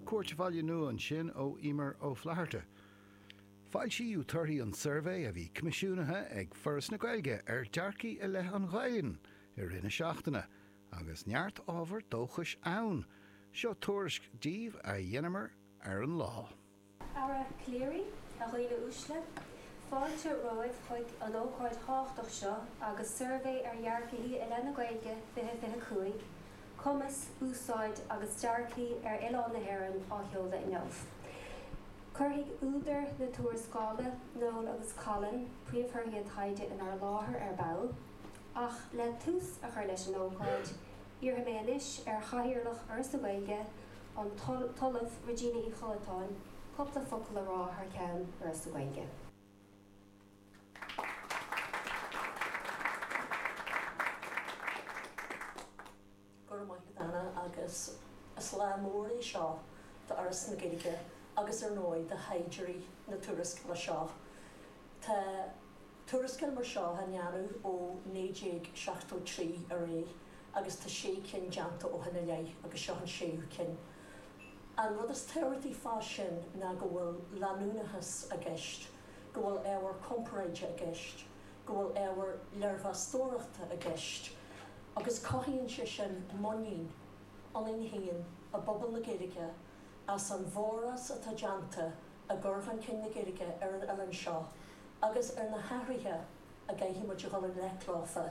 Cuairt an Bhaile Nua ansin ó Emer Ó Flatharta. Foilsíodh torthaí an tsuirbhé a bhí coimisiúnaithe ag Foras na Gaeilge ar dearcthaí i leith an Ghaelainn i rith na seachtaine agus neart ábhar dóchais ann. Seo tuairisc díobh a dheineamar ar an lá. Ar an gclár, a dhaoine uaisle, fáilte romhaibh chuig an ócáid thábhachtach seo agus suirbhé ar dhearcthaí i leith na Gaeilge 2025, cumas, úsáid agus dearcthaí ar oileán na hÉireann á sheoladh inniu. Cuirfidh údair na tuarascála, Noel agus Colin, príomhthorthaí an taighde in ár láthair ar ball, ach le tús a chur leis an ócáid, iarrfaidh mé anois ar Chathaoirleach Fhoras na Gaeilge, an tOllamh Regina Uí Chollatáin cúpla focal a rá thar cheann Fhoras na Gaeilge. Go raibh maith agat, Anna, agus is lá mór é seo d'Fhoras na Gaeilge agus, ar ndóigh, do thaighdeoirí na tuarascála seo. Tuarascáil mar seo á ndéanamh ó 1973 ar aghaidh agus tá sé cinn déanta ó shin i leith agus seo an séú ceann. An rud is tábhachtaí fá sin ná go bhfuil leanúnachas i gceist, go bhfuil ábhar comparáide i gceist, go bhfuil ábhar léirmheastóireachta i gceist agus cothaíonn sé sin muinín ionainn féin i bpobal na Gaeilge as an bhforás atá déanta i gcur chun cinn na Gaeilge ar an oileán seo. agus ar na hathruithe a gcaithfidh muid a dhul i ngleic leofa,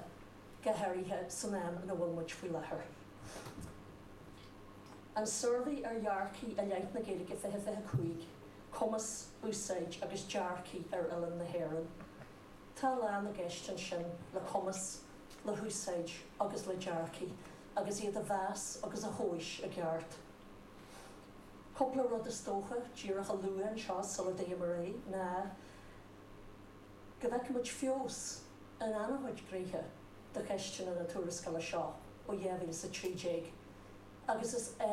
go háirithe san am ina bhfuil muid faoi láthair. An Suirbhé ar Dhearcthaí i Leith na Gaeilge 20 25, Cumas, Úsáid agus Dearcthaí ar Oileán na hÉireann. Tá a lán i gceist ansin le cumas, le húsáid agus le dearcthaí, agus iad a mheas agus a thomhas i gceart. Cúpla rud is dócha díreach a lua anseo sula dtéim ar aghaidh ná go bhfeicimid feabhas in an-chuid gnéithe de cheisteanna na tuarascála seo ó 2013 agus is